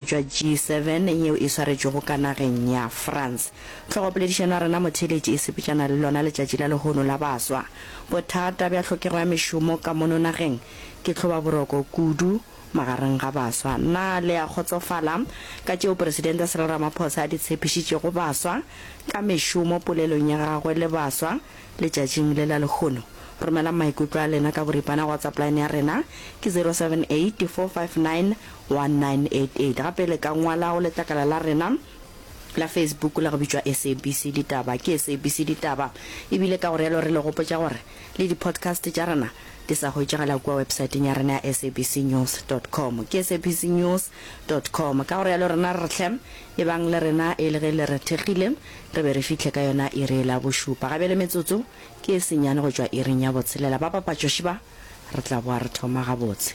bja G7 yeo e swaretšwego ka nageng ya France. Tlhogopoledišano ya rena motheeletši e sepetšana le lona letšatši la lehono la baswa. Bothata bja tlhokego ya mešomo ka mono nageng ke tlhobaboroko kudu magareng ga baswa. Na le a kgotsofala ka tšeo Presidente Cyril Ramaphosa a di tshepišitšego baswa ka mešomo polelong ya gagwe le baswa letšatšing le la lehono? Romelang maikutlo a lena ka boripana go WhatsApp line ya rena ke 078459 1988. Gape le ka ngwala go letlakala la rena la Facebook la go bitšwa SABC Ditaba. Ke SABC Ditaba e bile ka go realo re le gopotša gore le di-podcast tša rena di sa hwetšagala kua websaeteng ya rena ya sabcnews dot com. Ke sabcnews dot com. Ka go realo rena re hle e bang le rena e le ge le re thekgile re be re fihle ka yona iri e la bošupa. Ga bjale metsotso ke e senyane go tšwa iring ya botshelela. Ba papatšoši ba re tla boa re thoma gabotse.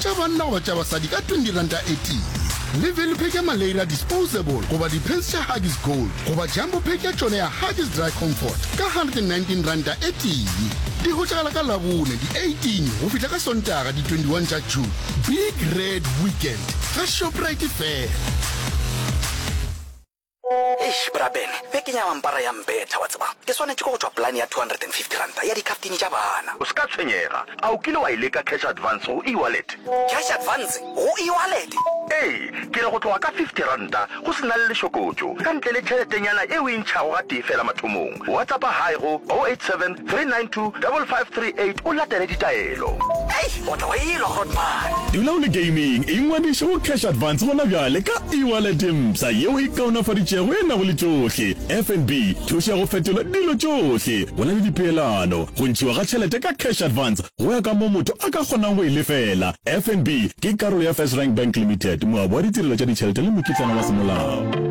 tša banna goba tša basadi ka R20.18. Le value pack ya Malaira Disposable goba di-pants tša Huggies Gold goba jumbo pack ya tšona ya Huggies Dry Comfort ka R119.18. Di hwetšagala ka Labone di 18 go fihla ka Sontaga di 21 tša June. Big Red Weekend ga Shoprite fela. Eish, Bra Ben, bjee ke nyama mpara ya mbetha, wa tseba. Ke swanetše ke go tšwa polane ya R250 ya dikhaftine tša bana. O se ka tshwenyega. A o kile wa e leka cash advance go e-wallet? Cash advance go e-wallet? Ee, ke re go tloga ka R50, go se na le lešokotšo, ka ntle le tšheletenyana e o e ntšhago gatee feela mathomong. WhatsAppa hi go 087 392 5538 o latele ditaelo. Eish o tla wa elwa hot man. Dula o le gaming, ingwadiše go Cash Advance gona bjale ka e-wallet e mpsha yeo e kaonafaditšego e nago le tšohle, FNB, thušo ya go fetola dilo tšohle, go na le dipeelano, go ntšhiwa ga tšhelete ka Cash Advance go ya ka moo motho a ka kgonang go e lefela. FNB ke karolo ya First Rank Bank Limited, moabi wa ditirelo tša ditšhelete le mokitlana wa semolao.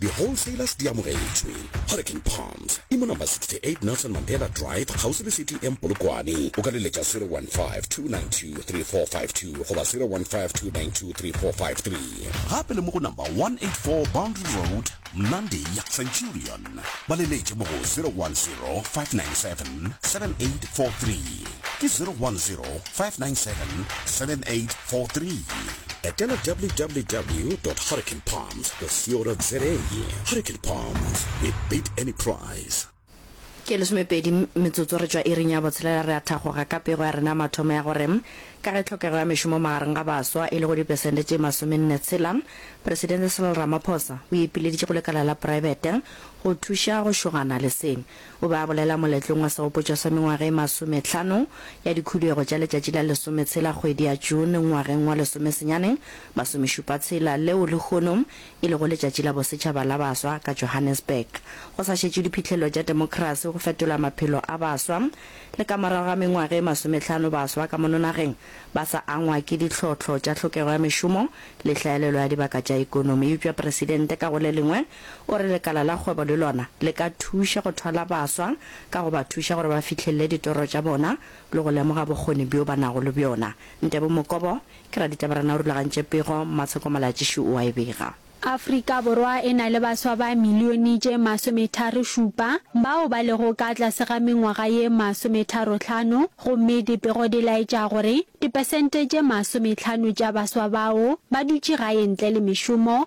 Di wholesalers di amogetšwe. Hurricane Palms e mo number 68 Nelson Mandela Drive kgauswi le City Inn Polokwane. O ka le letša 0152923452 goba 0152923453. Gape le mo go number 184 Boundary Road, Mnandi, Centurion. Ba le letše mo go 0105977843. Ke 0105977843. Etela www. Hurricane Palms. Sport.co.za Hurricane Palms, we beat any price. Ke lesomepedi metsotso re tšwa iring ya botshelela re a thagoga ka pego ya rena mathomo ya gore ka ge tlhokego ya mešomo magareng ga baswa e le go dipesente tše masomenne tshela, Presidente Cyril Ramaphosa o ipileditše go lekala la praebete go thuša go šogana le se. O be a bolela moletlong wa segopotšo sa mengwaga e masometlhano ya dikhubego tša letšatši la lesometshela kgwedi ya June ngwageng wa lesomesenyane masomešupa tshela leo lehono e lego letšatši la bosetšhaba la baswa ka Johannesburg go sa šetšwe diphihlello tša temokerasi go fetola maphelo a baswa le ka morago ga mengwaga e masometlhano baswa ka mono nageng ba sa angwa ke ditlhohlo tša tlhokego ya mešomo le hlaelelo ya dibaka tša ekonomi eupša presidente ka go le lengwe O re lekala la kgwebo le lona le ka thuša go thwala baswa ka go ba thuša gore ba fihlelele ditoro tša bona le go lemoga bokgoni bjo ba nago le bjona. Ntebo Mokobo, ke raditaberana o rulagantše pego, Matsheko Malatšiši o a e bega. Afrika Borwa e na le baswa ba milione tše masometharo-šupa bao ba lego ka tlase ga mengwaga ye masometharo-hlano gomme dipego di laetša gore dipesente tše masomehlano tša baswa bao ba dutše gae ntle le mešomo